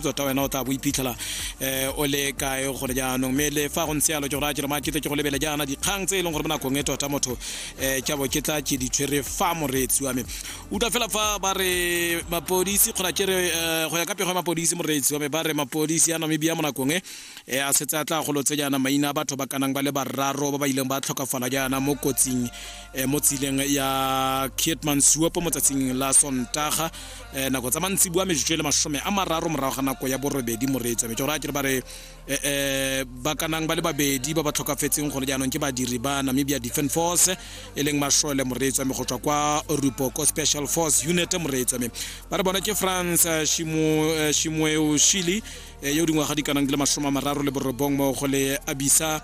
tota wena o tla bo iphitlhela um o le kae gone jaanong mme le fa go ntse yalo ke go raya ke re maakete ke go lebele jaana dikgang tse e leng gore mo nakong e tota motho um ke bo ke tla ke ditshwere fa moreetsi wa me utlwa fela fa ba re mapodisi kgona ke re eh, go ya ka pego ya mapodisi moreetsi wa me ba re mapodisi a namibia mo nakong e eh, a setse a tla golotse jaana maina a batho ba kanang ba le bararo ba ba ileng ba tlhokafala jaana mo kotsing eh, mo tsileng ya kietman suopo mo tsatsing la sontaga eh, nako tsa mantsibua metsotso e le masome a mararo morago ga nako ya borobedi moreetso metse gore a kere ba re eh, eh, ba kanang ba le babedi ba ba tlhokafetseng gone jaanong ke badiri ba namibia defense force e leng mashole moreetso ame go tswa kwa rupoko special force unit moreetso ame ba re bona ke france eh, eh, shimoeo shili eh, yo dingwaga di kanang di le masome a mararo le borobong mo go le abisa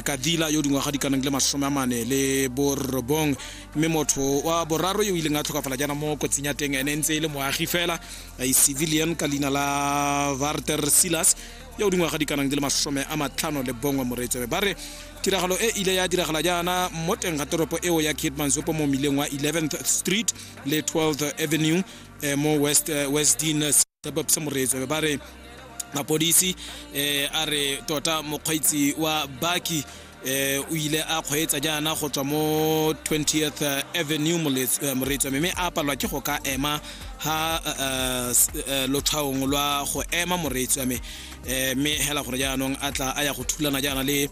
kadila yo dingwaga di kanang di le masome a mane le borobong mme motho wa boraro yo o ileng a tlhokafala jaana mo kotsing ya teng ene e ntse e le moagi fela a e civilian ka leina la varter silas ya o dingwaga di kanang di le masome a matlhano le bongwe moreetsebe ba re tiragalo e ile ya diragala jaana mo teng ga toropo eo ya kitmansopo mo mmileng wa 11th street le 12th avenue eh, mo west eh, westdin tsa moreetswe ba re mapodisi eh a re tota mokgweetsi wa baki eh o ile a kgweetsa jaana go tswa mo 20th eh, avenue eh, moreetswa mme a palwa ke go ka ema ha eh, lotlhaong lwa go ema moreetswa me mme hela gore jaanong a tla a ya go thulana jaana le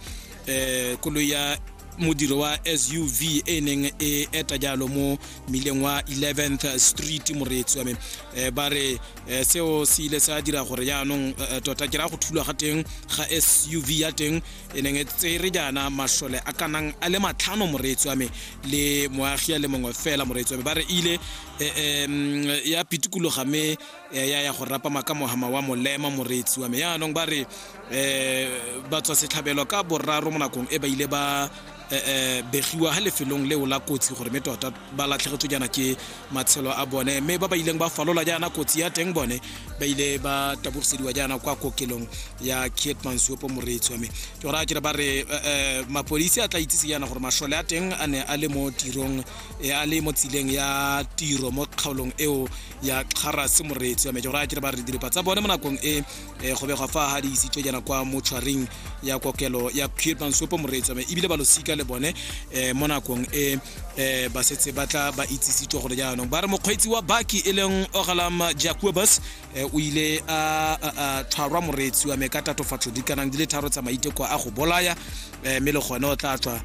um koloi ya modiro wa suv e neng e eta jalo mo mmileng wa 11th street moreetsi wa me um ba re um seo se ile sa dira gore jaanong um tota ke raya go thulwa ga teng ga suv ya teng e neng e tsere jaana masole a kanang a le matlhano moreetsi wa me le moagi ya le mongwe fela moreetsi wa me ba re ile um ya pitikologa me ya ya go rapama ka mohama wa molema moreetsi wa me jaanong ba re um batswa setlhabelo ka boraro mo nakong e ba ile ba eh, eh, begiwa ha lefelong leo la kotsi gore mme tota ba latlhegetswe jaana ke matshelo a bone mme ba ba ileng ba falola jaana kotsi ya teng bone ba ile ba tabogisediwa jaana kwa kokelong ya kietman suopo moreetswa mme ke gore a kere ba re eh, mapodisi a tla itsise jaana gore masole a teng a ne a le mo tirong a le mo tsileng ya tiro mo kgaolong eo ya kgarase moreetswa mme ke gore a kere ba re diripa tsa bone mo nakong e eh, go begwa fa ga di isitswe jana kwa motshwaring ya kokelo ya kirban sopo moreetsame ebile ba losika le bone um mo nakong e um ba setse ba tla ba itsisitswe gore jaanong ba re mokgweetsi wa baki e leng ogalam jacobus um o ile a tshwarwa moreetsi wa me ka tatofatso dikanang di le tharo tsa maiteko a go bolaya um mme le gone o tla tswa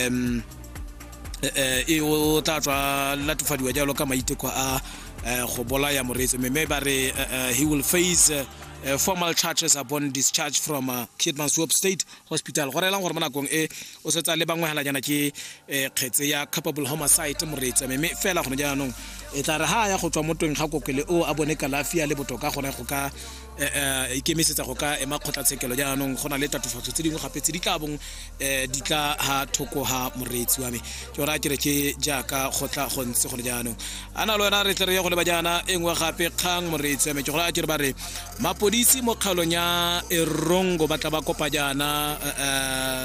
um e o tla tswa latofadiwa jalo ka maiteko a go bolaya moreetsi mme ba re he will face uh, formal charges upon discharge from uh, Kitman Swap State Hospital go relang gore mo nakong e o setsa le bangwe halanyana ke eh, kgetse ya capable homicide moreetsa mme fela gone jaanong e tla re ha ya go tswa mo teng ga kokele o a bone kalafi ya le botoka gone go ka eh, eh, ikemisetsa go ka ema kgotlatshekelo jaanong go na le tatofatso tse dingwe gape tse di ka bong um di tla ha thoko ga moreetsi wa me ke ora ke re ke jaaka go tla go ntse gone jaanong a na le wena re tle re ye go leba jaana e nngwe gape kgang moreetsi wa me ke gore a ke re ba re mapodisi mo kgaolong ya erongo ba tla ba kopa jaana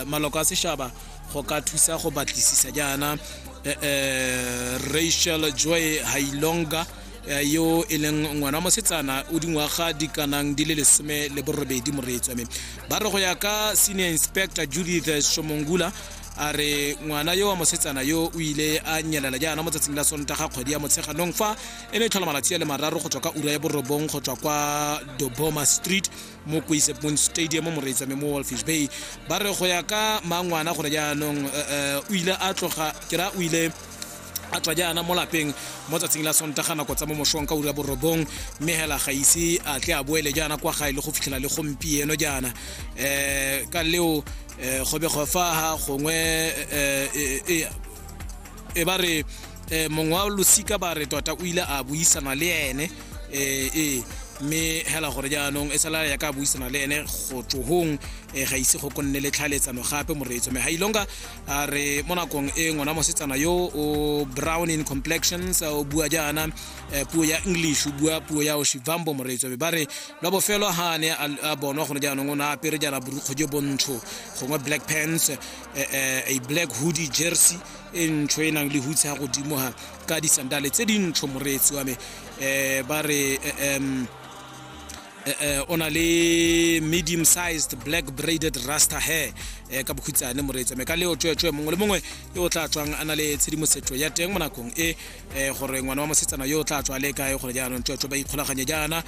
um maloko a sešhaba go ka thusa go batlisisa jaana eh, eh, rachel joy hailonga eh, yo e leng ngwana wa mosetsana o dingwaga di kanang di le lesome le borobedi moreetswa mme ba re go ya ka senior inspector judith shomongula a re ngwana yo wa mosetsana yo o ile a nyelela jaana mo tsatsing la sontaga kgwedi ya motsheganong fa e ne e tlhola malatsi a le mararo go tswa ka ura ya borobong go tswa kwa doboma street mo koisepon stadium mo reetsame mo wolfish bay ba re go ya ka mangwana gore jaanong eh, eh, o ile a tloga ke ra o ile a tswa jaana mo lapeng mo tsatsing la sontaga nako tsa mo mosong ka ura borobong mme hela ga ise a tle a boele jaana kwa gae le go fitlhela le gompieno jaana um ka leo um go be go faha gongwe e ba re um mongwe wa losika ba re tota o ile a buisana le ene ee mme hela gore jaanong e sala ya ka buisana le ene go tsohong um ga ise go konne le tlhaeletsano gape moreetso me ga ilonga a re mo nakong e ngwana mosetsana yo o brown in complexions o bua jaana eh, puo ya english o bua puo ya oshivambo moreetso be ba re lwa bofelo ha ne a bonwa gone jaanong o ne a apere jaana borukgo jo bontsho gongwe black pants eh, eh, a black hoodie jersey e ntsho e nang le hutse ya godimo ha ka disandale tse dintsho moreetsi wa me um ba re um Eh, eh, o na le medium sized black braided rasta hair eh, ka bokhutshane moreetsa me ka leo tsweetswe mongwe le mongwe yo o tla tswang a na le tshedimosetso ya teng mo nakong e gore ngwana wa mosetsana yo o tla tswa le kae gore jaanong tsweetswe ba ikgolaganye jaana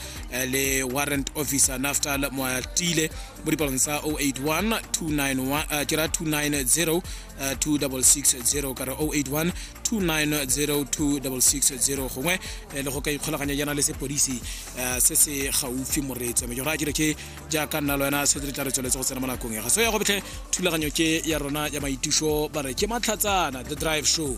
le warrant officer naftal moatile mo dipalong tsa 081 291 ke ra 290 2660 ka re 081 290 2660 gongwe le go ka ikgolaganya jaana le sepodisi um se se gaufi moreetso mme ke go a kere ke jaaka nna le wena se re tla re tsweletse go tsena mo nakong ya ga so ya go betlhe thulaganyo ke ya rona ya maitiso ba re ke matlhatsana the drive show